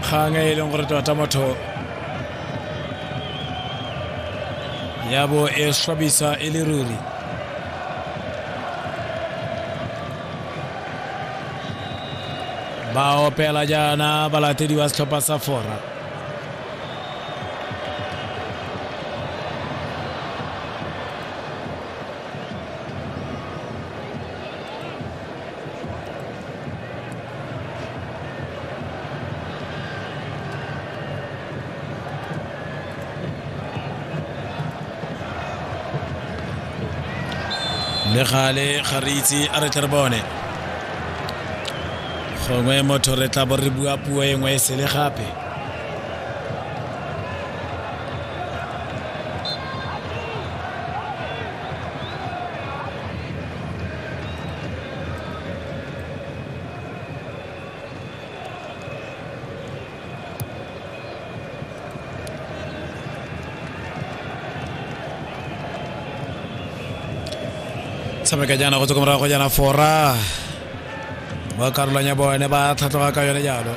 kgang e e leng gore tota motho ya bo e swabisa e le ruri ba opela jaana balatedi ba setlhopha sa fora le gale ga re itse a re tle re bone gongwe motho re tla bo re bua puo e nngwe e sele gape tshameka jaana go tsoko morago jaana fora ba karolwang ya bone ba tlhatlhoga ka yone jalo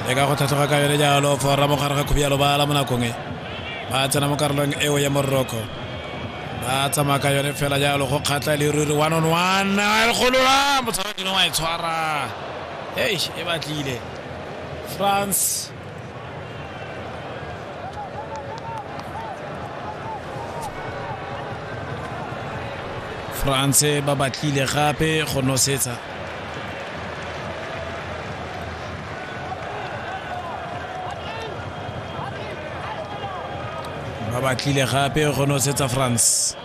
le ka go tlhatlhoga ka yone jalo fora mo gare ga khubialo bala mo nakong e ba tsena mo karolong eo ya moroko ba tsamaya ka yone fela jalo go kgatlha e le ruri one on one a e golola motshwaradino wa e tshwara ei e batlile france france ba batlile gape go nosetsa ba batlile gape go nosetsa france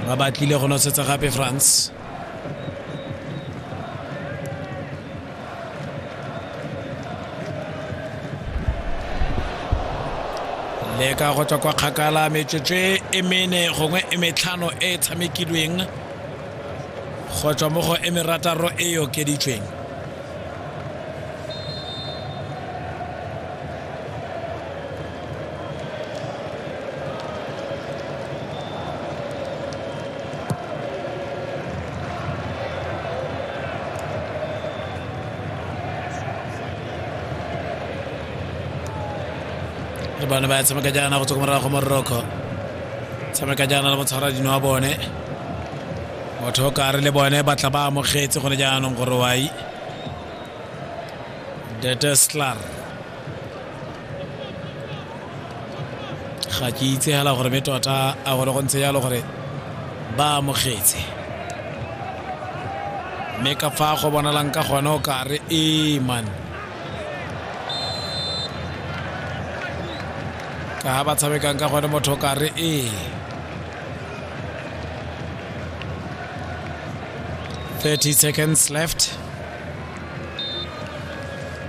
ba batlile go nosetsa gape france le ka go tswa kwa kgakala metsotso e mene gongwe e metlhano e e tshamekilweng go tswa mo go e merataro e e okeditsweng le bone ba tshameka jaana go tswa ko morago moroko tshameka jaana le motshwara dino wa bone motho o kare le bone batla ba amogetse gone jaanong gore wai deteslar ga ke itse fela gore be tota a gore go ntse jalo gore ba amogetse mme ka fa go bonalang ka gone o ka re ee man ka ga ba tshamekang ka gone motho o ka re ee 30 seconds left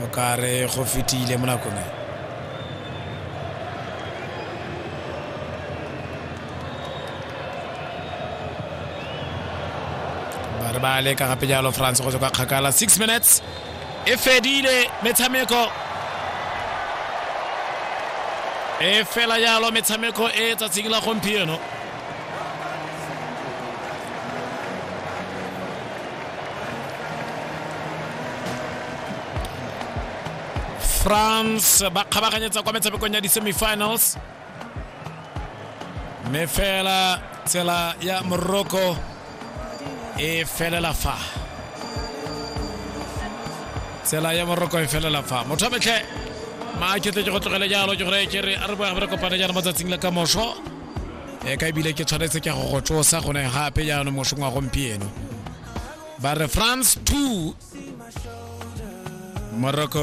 mokare go fetile mo nakong e ba re ba leka gape jalo france go tswa ka kgakala 6 minutes e fedile metshameko e fela jalo metshameko e tsatsing la gompieno france ba kgabaganyetsa kwa metshamekong ya di-semifinals mme fela tsela ya morocco e felela fa tsela ya morocco e felela fa motho a metlhe maakete ke go tlogele jalo ke gore ke re a re boya re kopane jaana mo tsatsing la ka moso e ka ebile ke tshwanetse ke go go tsosa gone gape jaanong mosong wa gompieno ba re france 2 morocco